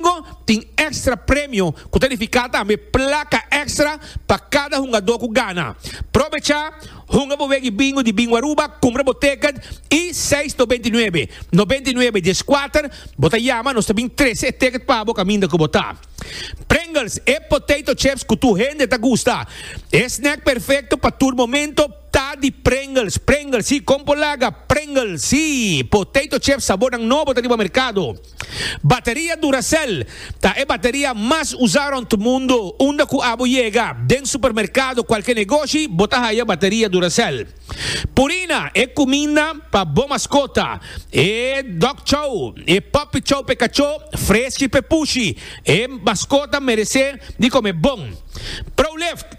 Domingo tin extra premio cu ta nifica tambe placa extra pa cada hungador cu gana. Probecha, hunga bo weggi Bingo di Bingo Aruba, cumpra bo ticket y seis to beinti nuebe, no beinti nuebe dies cuater, bo ta yama nos ta bin trece e ticket pa bo caminda cu bo ta. Pringles, e potato chips cu tur hende ta gusta. E snack perfecto pa tur momento ta di Pringles. Pringles, si, con polaga, Pringles, si, potato chips sabornan nobo ta riba mercado. Bateria Duracell ta e bateria mas usa rond mundo, unda cu abo yega den supermercado cualke negoshi bo ta haya bateria Duracell. Purina e cuminda pa bo mascota, e dog chow, e puppy chow p'e cacho, freski p'e pushi, e mascota merece di come bon. Prolift.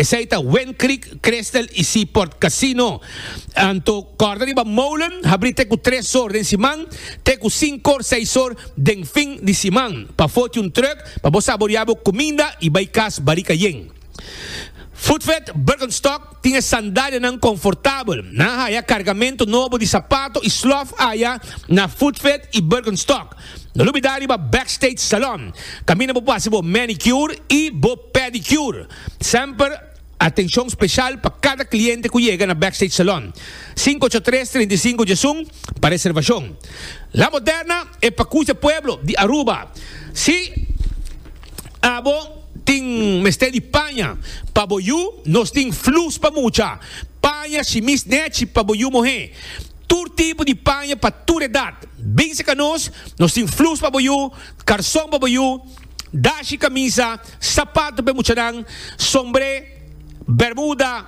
Esei ta Wind Creek, Crystal y Seaport Casino. Anto kòrda riba Molen habrí te ku tres or den siman te ku sinkor, seis or den fin di siman. Pa foti un trùk pa bo saboriá bo kuminda y bai kas barika yen. Foodfed Birkenstock tin e sandalianan konfortabel. Nan haya kargamentu nobo di sapato y slòf aya na Foodfed y Birkenstock. No lubida riba Backstage Salon, kaminda bo por hasi bo manicure i bo pedicure. Semper atenshon speshal pa kada kliente ku yega na Backstage Salon. Sinku ocho tres, trinta i sinku djesun pa reservashon. La Moderna e pakucha pueblo di Aruba. Si abo tin mester di paña pa bo yu, nos tin flus pa mucha. Paña shimis nechi pa bo yu mohé. Tur tipo di paña pa tur edat. Binse ka nos, nos tin flus pa bo yu, karson pa bo yu, dashi, kamisa, sapato pa e muchanan, sombré, bermuda,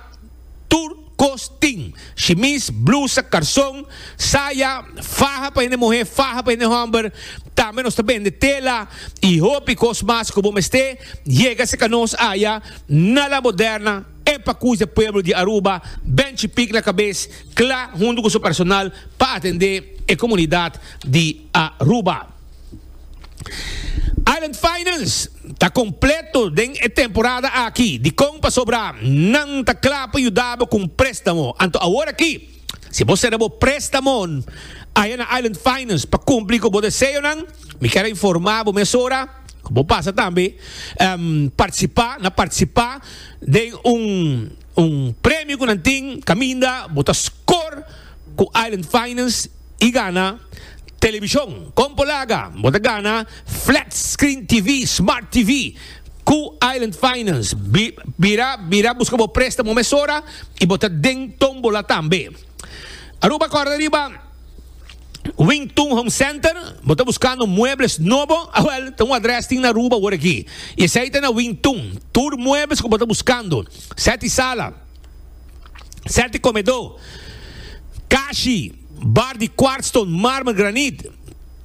tur kos tin, shimis, blusa, karson, saya, faha pa hende muhé, faha pa hende hòmber, tambe nos ta bende tela i hopi kos mas ku bo mest'é, yega se ka nos aya na La Moderna, e pakush dje pueblo di Aruba, Ben Chipik na kabes. Kla huntu ku su personal pa atendé e komunidat di Aruba. Island Finance ta kompleto den e temporada aki. Dikon pasobra nan ta kla pa yuda bo ku un préstamo? Anto aworakí, si bo sera bo préstamo aya na Island Finance pa kumpli ku bo deseonan, mi kier a informá bo mesora ku bo pasa tambe partisipá na partisipá den un Un premio cu nan tin caminda bo ta scor cu Island Finance y gana television. Con por laga? Bo ta gana Flat Screen TV, Smart TV, cu Island Finance. Bira bira busca bo prestamo mesora y bo ta den tombola tambe. Aruba corda riba. Wing Tun Home Center, bo ta buscando muebles nobo? Ah wel, ta un adres tin na Aruba awor aki. Y esey ta na Wing Tun. Tur muebles cu bo ta buscando. Seti sala, seti comedo, cashi, bar di quartzstone, marmer, granit.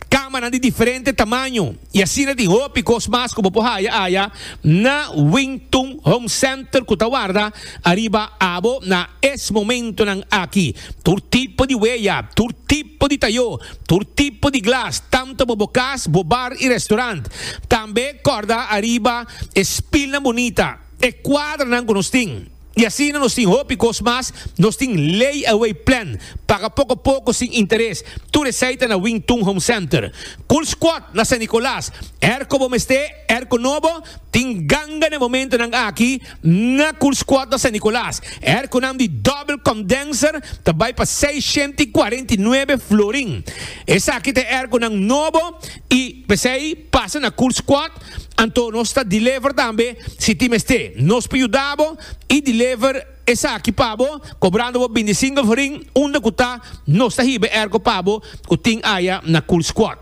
Kamanan di diferente tamaño i asina tin hopi kos mas ku bo por haya aya na Wing Tun Home Center ku ta warda ariba abo na es momentonan aki. Tur tipo di weya, tur tipo di tayó, tur tipo di glas, tantu pa bo kas, bo bar i restorant. Tambe kòrda ariba e spilnan bunita, e kuadranan ku nos tin. I asina nos tin hopi kos mas. Nos tin lay away plan, paga poko poko sin interes. Tur esei ta na Wing Tun Home Center. Cool Squad na San Nicolas. Erko bo mester erko nobo? Tin ganga n'e momentonan aki na Cool Squad na San Nicolas. Erkonan di double condenser ta bai pa seis shenta i kuarenta i nuebe florin. Esaki ta e erkonan nobo i p'esei pasa na Cool Squad. Anto nos ta deliver tambe si tin mester. Nos por yuda bo y deliver esaki pa bo cobrando bo bindi single forin unda cu ta nos ta hiba e erco pa bo cu tin aya na Cool Squad.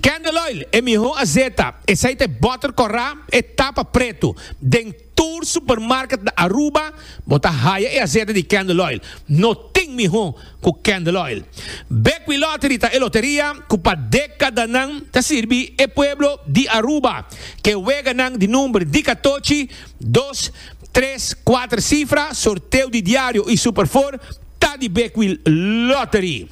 Candle oil, e miho azeta, esey ta e butter corra, e tapa preto, den. Tur supermarket na Aruba bo ta haya e asete di Candle Oil. No tin miho ku Candle Oil. Bekwin Lottery ta e loteria ku pa dekadanan ta sirbi e pueblo di Aruba. Ke weganan di number di katochi, dos, tres, kuater sifra, sorteo di diario i superfor ta di Bekwin Lottery.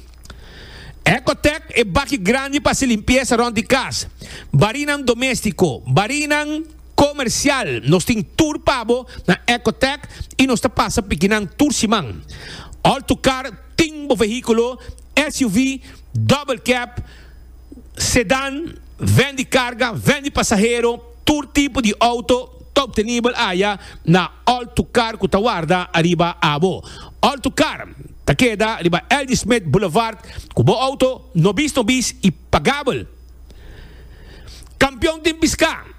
Ecotec e baki grandi pa hasi limpiesa rond di kas, barinan domestico, barinan. Comercial, Nos tin tur pa bo na Ecotech y nos ta pasa pikinan tur siman. All to car, Tin bo vehiculo, SUV, double cab, sedan, ven di carga, ven di pasahero, tur tipo di auto ta obtenibel aya na All to car cu ta warda ariba abo. All to car ta keda riba Ldismith Boulevard cu bo auto nobis nobis y pagabel. Kampion tin piská.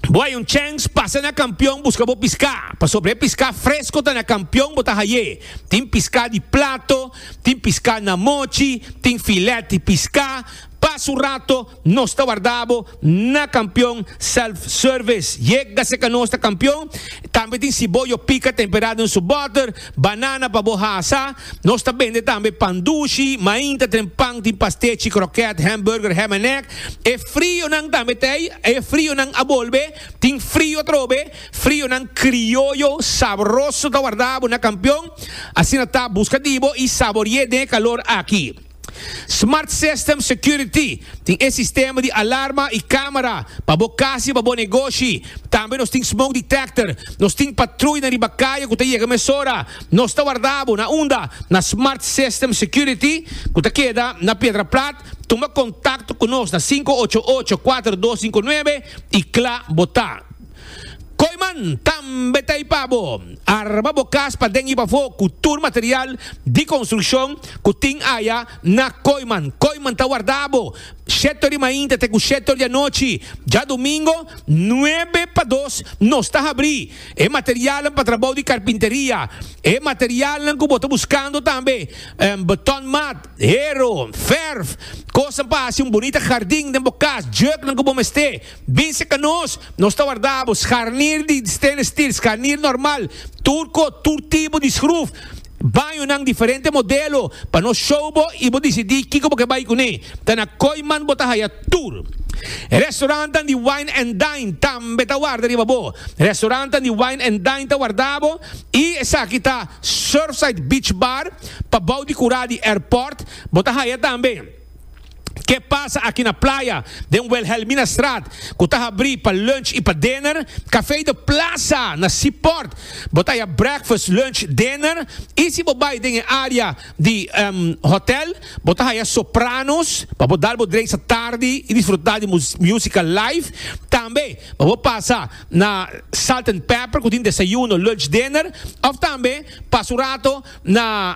Bo hay un chèns pasa na kampion buska bo piská, pasobra e piská fresko ta na kampion bo ta hay'é. Tin piská di plato, tin piská na mochi, tin filèt di piská. Pa su rato nos ta wardá bo na kampion self-service. Yega seka nos ta kampion. Tambe tin siboyo pika temperá den su bòter. Banana pa bo hasa. Nos ta bende tambe pan dushi, mainta, tren pan, tin pastechi, kroket, hamburger, ham en egg. E frionan tambe ta ei. E frionan a bolbe. Tin frio atrobe. Frionan krioyo sabroso ta warda bo na Kampion. Asina ta, buska di bo i sabori'é den e kalor aki. Smart System Security tin e sistema di alarma y camera pa bo cas y pa bo negoshi. Tambe nos tin Smoke Detector. Nos tin patruy na riba caye cu ta yega mesora. Nos ta warda bo, na unda? Na Smart System Security cu ta keda na Piedra Plat. Tuma contacto cu nos na sinku ocho ocho, kuater dos sinku nuebe y cla bo ta. Koiman tambe ta ipa bo. Arma bo kas paden i pafó ku tur material di konstrukshon ku tin aya na Koiman. Koiman ta wardá bo shetor di mainta te ku shetor di anochi. Djadumingo nuebe pa dos nos ta habrí e materialnan pa trabou di karpinteria. E materialnan ku bo ta buskando tambe betonmat, hero, verf, kosnan pa hasi un bunita hardin den bo kas, jurknan ku bo mester. Binse ka nos, nos ta warda bo scharnier di stainless steel, scharnier normal, turco, tur tipo di schruf, bañonan diferente modelo pa nos show bo y bo dicidi kico bo ke bay cune. Ta na Kooiman bo ta haya tur. Restaurantnan di Wine and Dine tambe ta warda riba bo. Restaurantnan di Wine and Dine ta warda bo y esaki ta Surfside Beach Bar pa bou di cura di airport, bo ta haya tambe. Ke pasa aki na playa, den Wilhelminastraat, ku ta habrí pa lunch i pa dinner, Café de Plaza na Seaport. Bo ta haya breakfast, lunch, dinner i si bo bai den e área di hòtèl, bo ta haya Sopranos pa bo dal bo dreisa tardi i disfrutá di músika live. Tambe pa bo pasa na Salt and Pepper ku tin desayuno, lunch, dinner òf tambe pasa un rato na.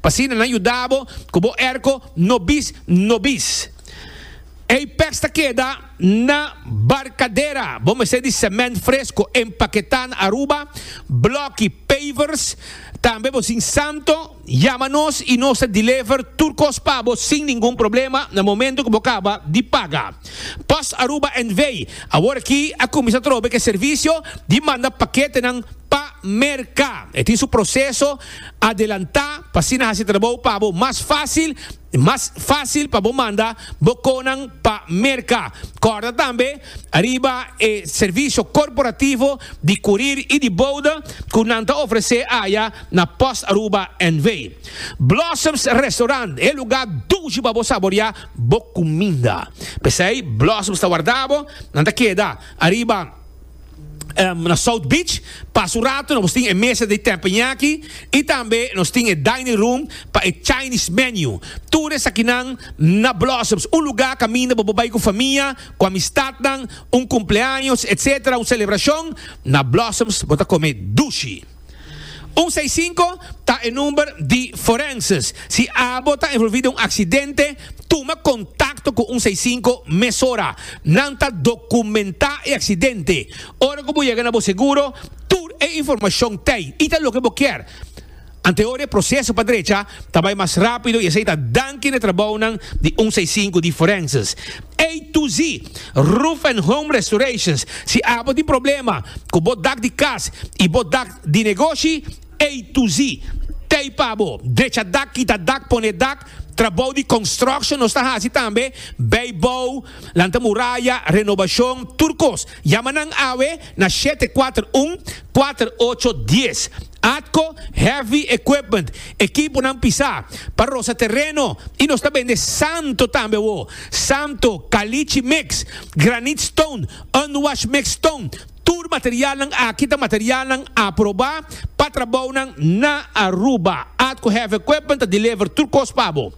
pa asina nan yuda bo ku bo erko no bis no bis. Ei pèks ta keda na barkadera, bo mester di semènt fresko empaketá na Aruba, blòki, pavers, tambe bo sin santo yama nos i nos ta dilever tur kos pa bo sin ningun problema na momentu ku bo kaba di paga. Post Aruba NV. Awor aki a kuminsá trobe ku e servisio di manda paketenan pa merka. E tin su proseso Adelantá pa asina hasi trabou pa bo mas fásil i mas fásil pa bo manda bo konan pa merka. Kòrda tambe riba e servisio korporativo di kurir i di bouda ku nan ta ofresé aya na Post Aruba NV. Blossoms Restaurant, e lugá dushi pa bo saboriá bo kuminda. P'esei Blossoms ta warda bo, nan ta keda ariba. na South Beach pas un rato nos tin e mesa di tepenyaki y tambe nos tin e dining room pa e Chinese menu tur esakinan na Blossoms un lugar caminda bo por bay cu famia cu amistadnan un cumpleaños etc un celebracion na Blossoms bo ta come dushi. Un seis sinku ta e number di Forenses. Si abo ta envolvi den un aksidente, tuma kontakto ku un seis sinku mesora. Nan ta dokumentá e aksidente. Ora ku bo yega na bo seguro, tur e informashon t'ei i ta loke bo kier. Antehoria e proseso pa drecha ta bai mas rápido i esei ta danki na trabounan di un seis sinku di Forenses. A to Z, Roof and Home Restorations, si abo tin problema cu bo dak di cas y bo dak di negoshi, A to Z ta ey pa bo, drecha dak, kita dak, pone dak, trabou di construction nos ta haci tambe, bay bou, lanta muraya, renobacion, tur cos, yama nan awe na shete kuater un, kuater ocho, dies. Atco heavy equipment, ekiponan pisá, pa rosa tereno y nos ta bende santo tambe awo, santo, calichi mix, granite stone, unwashed mixed stone, tur materialnan aki ta materialnan aprobá pa trabounan na Aruba. Atco Heavy Equipment ta deliver tur cos pa bo.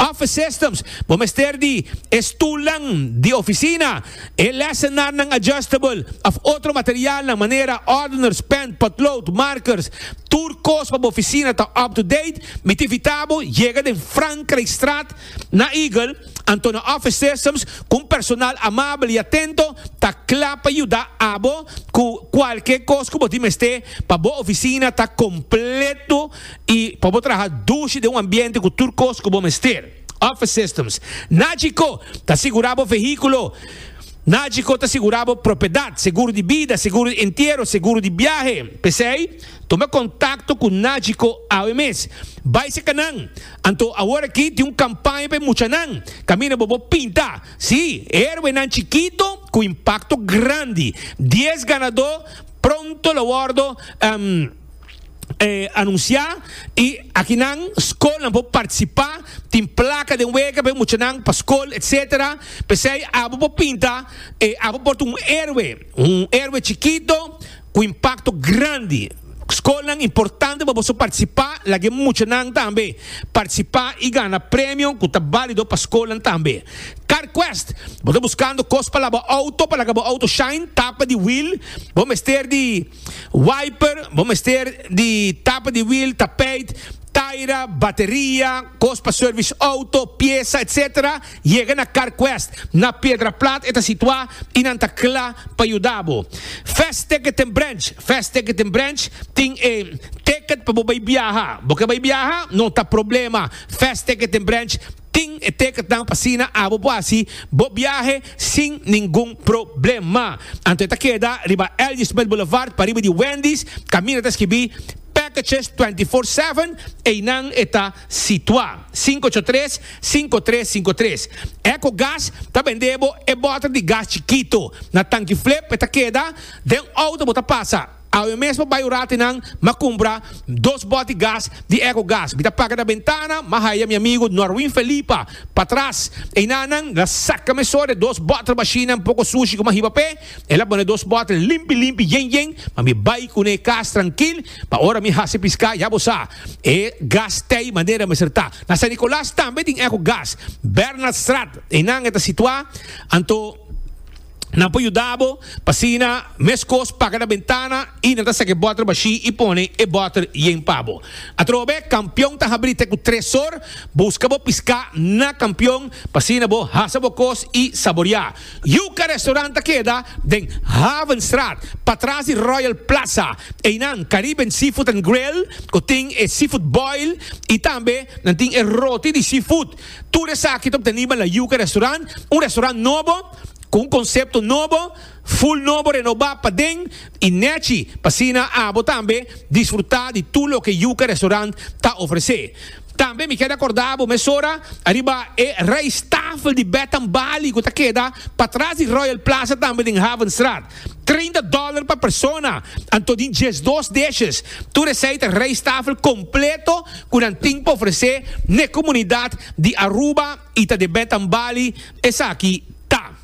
Office Systems, bo mester di e stulnan di oficina, E lesenarnan adjustable of otro materialnan manera ordeners, pen, potlood, markers, tur kos pa bo oficina ta up to date, mi ta invita bo yega den Frankrijkstraat na Eagle, anto na office systems cu un personal amabel y atento ta cla pa yuda abo cu cualkier cos cu bo tin mester pa bo oficina ta completo y pa bo traha dushi den un ambiente cu tur cos cu bo mester. Office Systems. Nagico ta sigurá bo vehíkulo. Nagico ta sigurá bo propiedat, seguro di bida, seguro di entiero, seguro di biahe. P'esei, tuma kontakto ku Nagico awe mes. Bai serka nan. Anto awor aki tin un kampaña pa e muchanan. Kaminda bo bo pinta. Sí, héroenan chikito ku impakto grandi. Dies ganadó pronto lo wòrdu. anuncia y aki nan school nan por participa tin placa den wega pa e muchanan pa school etc pesey abo por pinta abo por ta un heroe un heroe chikito cu impacto grandi school nan importante pa boso participa lague muchanan tambe participa y gana premio cu ta balido pa school nan tambe car quest bo ta buscando cos pa laba auto pa laga bo auto shine tapa di wheel bo mester di. Wiper, bo mester di tapa di wiel, tapijt, taira, bateria, kos pa service auto, piesa, etc. Yega na CarQuest na Piedraplat e ta situa y nan ta cla pa yuda bo. Fast Ticket en Branch, Fast Ticket en Branch tin e ticket pa bo bay biaha. Bo ke bay biaha? No ta problema, Fast Ticket en Branch Tin e tekentnan pa asina abo bo hasi bo biahe sin ningun problema. Anto e ta keda riba L.G. Smith Boulevard pariba di Wendy's, kaminda ta skibi Packages Twenty Four Seven, einan e ta situa. Sinku ocho tres, sinku tres sinku tres. Echo Gas ta bende bo e boter di gas chikito. Na tanki flip e ta keda den outo bo ta pasa. Awe mesmo bai un rati nan m'a cumpra dos boti gas di Eco Gas. Mi ta paga na bentana, m'a haya mi amigo Norwin Felipa patras. Einan nan la saca meso de dos bottle machine nan poco sushi cu m'a hiba p'e. El a pone dos bottle limpi limpi yen yen, ma mi bai cun'e cas trankil, pa ora mi haci pisca ya bo sa e gas t'ey manera mester ta. Na San Nicolas tambe tin Eco Gas. Bernhardstraat, einan e ta situa anto. Nan por yuda bo pa sina meskos paga na bentana i nan ta saki e bòter bashí i pone e bòter yen pa bo. Atrobe, kampion ta habrí te ku tres sor. Buska bo piská na kampion pa asina bo hasa bo kos i saboriá. Yuka Restaurant ta keda den Havenstraat, patras di Royal Plaza. Einan Caribbean Seafood and Grill ku tin e seafood boil i tambe nan tin e roti di seafood. Tur esaki ta obteniba na Yuka Restaurant, un restaurant nobo. cu un concepto nobo, full nobo renoba paden y nechi p'asina abo tambe disfruta di tur loke Yuca Restaurant ta ofrece. Tambe mi keda corda abo mesora ariba e rijsttafel di Bed and Bali cu ta keda patras di Royal Plaza tambe den Havenstraat. Treinta dòler pa persona, anto di diesdos dishes. Tur esei ta rijsttafel completo cu nan tin pa ofrece n'e comunidad di Aruba y ta de Betambali. Esaki ta.